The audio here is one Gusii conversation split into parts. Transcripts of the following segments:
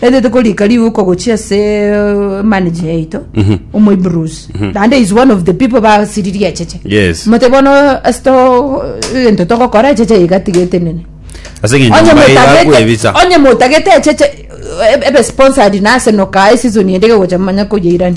Ere tokorika riuko gochia ase manager yaito omoibrusi naende is one of the people basiririe echeche Yes. mote bono ase to egento togokora echeche iga tigete nene Ase eng'encho onye mbae motagete igakwebisa. onye motagete echeche ebe sponsored nase nokae season ende gegocha manya koyeirani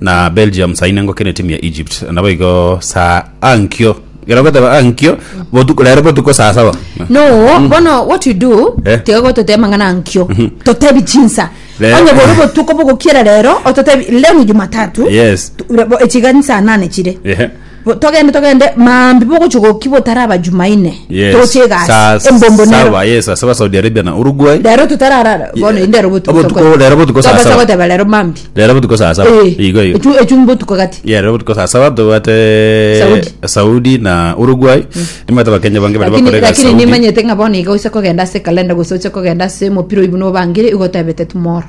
na belgium saine ngokina etimu ya egypt naboigo saa ankio gera goteba ankio botuko rero botuko saa saba no bono what you do Eh. tiga gototeba mang'ana nkio totebi chinsa Rero- onye bore botuko bogokiera rero ototebi leo ni jumatatu Yes. Tu- bo- echiga ni saa nane chire Ehe. Bo- togende togende maambi bogochia goki botaraba jumaine Yes. toche egasi Saa embombo nero saba, yes, asaba Saudi Arabia na Uruguay. rero totarara bono inde rero botuko Obotuko- tokore. rero botuko saa Tobasa saba. goteba rero maambi Rero botuko saa saba. Eh, Igo igo. echu- echu mbotuko gati Yeah, rero botuko saa saba tobwate Saudi. Saudi na Uruguay. Nimwete bakenya bange bari lakini bakore egasi lakini Saudi. nimanyete ng'a bono iga oise kogenda ase ekalenda gose oche kogenda ase omopira oibu nobangire igotebete tomorrow